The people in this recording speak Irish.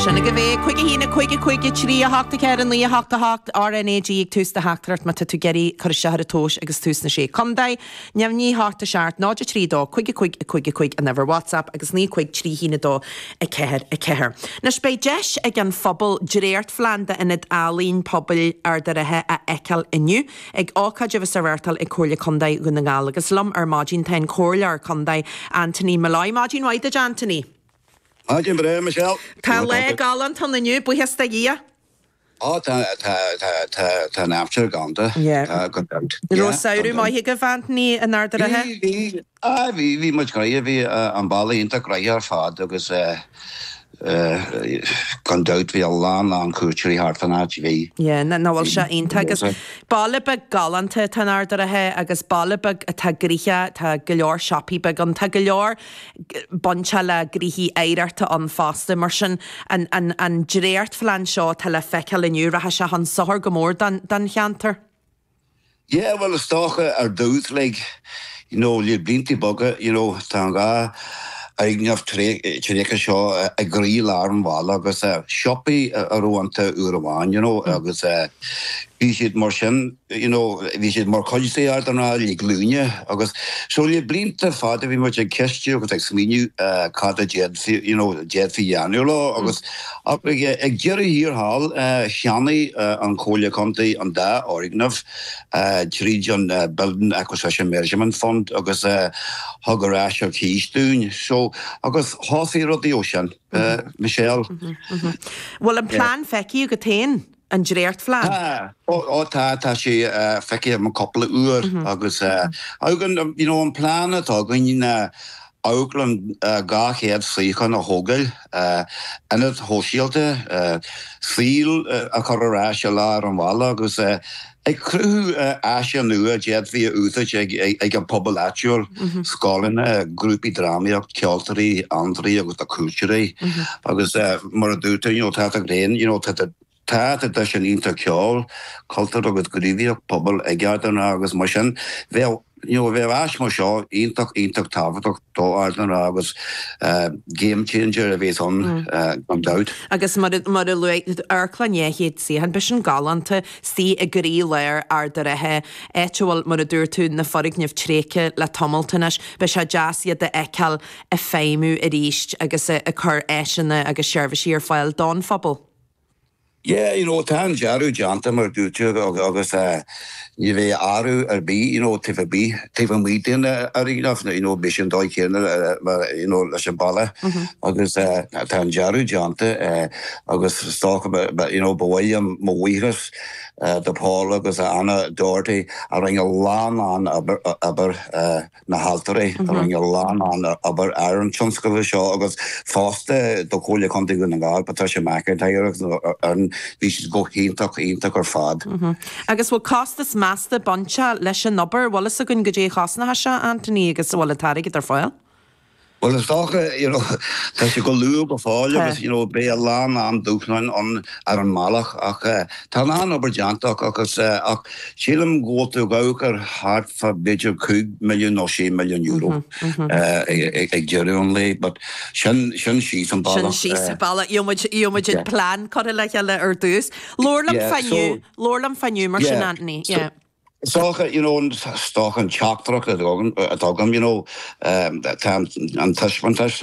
Sin agaibh é, cúig a haon, a cúig, a cúig a trí, a hocht a ceathair, a naoi a hocht, a hocht, RNAG ag tús do theachtaireacht má tá tú ag iarraidh cur isteach ar an tomhas agus tú sna Sé Contae, neamhní hocht a seacht, náid a trí a dó, cúig a cúig, a cúig a cúig an uimhir WhatsApp agus naoi a cúig trí haon a dó a ceathair a ceathair. Anois beidh deis ag an phobal dréachtphlean d'ionad ealaíon pobail Ard a' Rátha a fheiceáil inniu. Ag ócáid a bheas á reáchtáil ag Comhairle Condae Dhún na nGall agus liom ar maidin tá an Comhairleoir Condae Anthony Molloy. Maidin mhaith duit Anthony. Maidin bhreá Michelle. Tá lá galánta ann inniu, buíochas do Dhia. Ó tá, tá, tá, tá, tá an aimsir galánta, tá, gan dabht. An raibh samhradh maith agaibh Anthony in Ard a' Ratha? Bhí, bhí. Aye, bhí, bhí muid gnoitheach, bhí an baile iontach gnoitheach ar fad agus gan dabht bhí a lán lán cuairteoirí thart fán áit, bhí, Yeah, ná, ná, bhuel bhí sé iontach agus bhí. baile beag galánta atá in Ard a' Ratha agus baile beag atá gnoitheach, tá go leor siopaí beaga ann, tá go leor bainte le gnoithe oidhreachta ann fosta mar sin an, an, an dréachtphlean seo atá le feiceáil inniu, rachaidh sé chun sochair go mór don, don cheantar. Yeah, bhuel, is dócha ar dtús, like, you know, le blianta beaga, you know, tá an dá fhoirgneamh tréigthe seo i gcroí lár an bhaile agus siopaí a raibh iontu uair amháin, you know, agus bhí siad mar sin, you know, bhí siad mar chuid d'Ard an Rátha le glúine agus so le blianta fada bhí muid ag ceistiú agus ag smaoineamh cad a d'fhéadfaí, you know, d'fhéadfaí a dhéanamh leo agus, Ach ag deireadh thiar thall, cheannaigh an Chomhairle Contae an dá fhoirgneamh tríd an Building Acquisition Measures Fund agus thug ar léas ar cíos dúinn. So, agus thosaigh rudaí ó sin. Michelle? Bhfuil an plean feicthe agat féin? An dréachtphlean? Tá. Ó tá, tá sé feicthe agam cúpla uair agus you know an plean atá againn ná amharclann 200 suíochán a thógáil, ionad shóisialta, saol a chur ar ais i lár an bhaile agus Ag cruthú áiseanna nua a d'fhéadfaí a úsáid ag an bpobal áitiúil, scoileanna, grúpaí drámaíocht, ceoltóirí, fiontraithe agus do chuairteoirí. Agus mar a dúirt tú, tá tú féin, you know, tá tú, tá traidisiún iontach ceol, cultúr agus gníomhaíocht pobail ag Ard an Rátha agus mar sin bheadh, you know, bheadh áis mar seo iontach, iontach tábhachtach do Ard an Rátha agus game changer a bheas ann gan dabht. Agus mar a luaigh tú, amharclann dhá chéad suíochán, beidh sin galánta, suite i gcroílár Ard a' Rátha, áit a bhfuil, mar a dúirt tú, na foirgnimh tréigthe le tamalt anois. Beidh sé deas iad a fheiceáil ag feidhmiú arís agus ag cur áiseanna agus seirbhísí ar fáil don phobal. Yeah, you know, tá an dearadh déanta mar a dúirt tú agus ní bheidh athrú ar bith, you know, taobh amuigh, taobh amuigh den fhoirgneamh, you know, beidh sé an dóigh chéanna mar, you know, leis an bhalla agus tá an dearadh déanta agus is dócha, you know, ba mhaith liom mo bhuíochas do Paula agus Anna Doherty a rinne a lán lán obair. na hAltaraí. Rinne a lán lán obair ar an tionscadal seo agus fosta do Chomhairle Chontae Dhún na nGall, Patricia McIntyre agus an fhoireann, bhí siad go hiontach, iontach ar fad. Agus bhfuil costas measta buailte leis an obair? Bhfuil fhios againn goidé a chosnóchas seo, a Anthony, agus an bhfuil an t-airgead ar fáil? Bhuel, is dócha, you know, tá sé go luath go fóill agus, you know, beidh a lán, lán dúshláin ar an mbealach ach eh, tá a lán obair déanta acu agus eh, ach sílim go bhfuil tú ag amharc ar thart fá b'fhéidir cúig mhilliún nó sé mhilliún euro eh, ag, ag, ag deireadh an lae but sin, sin síos an bealach. síos eh, an bealach, gheobhaidh muid, gheobhaidh muid an plean curtha le chéile ar dtús. Labhair liom fá inniu, labhair liom fá inniu mar sin Anthony, So, yeah. Is dócha, you know, is dócha an teachtaireacht atá agam inniu ag, you know, tá an taispeántas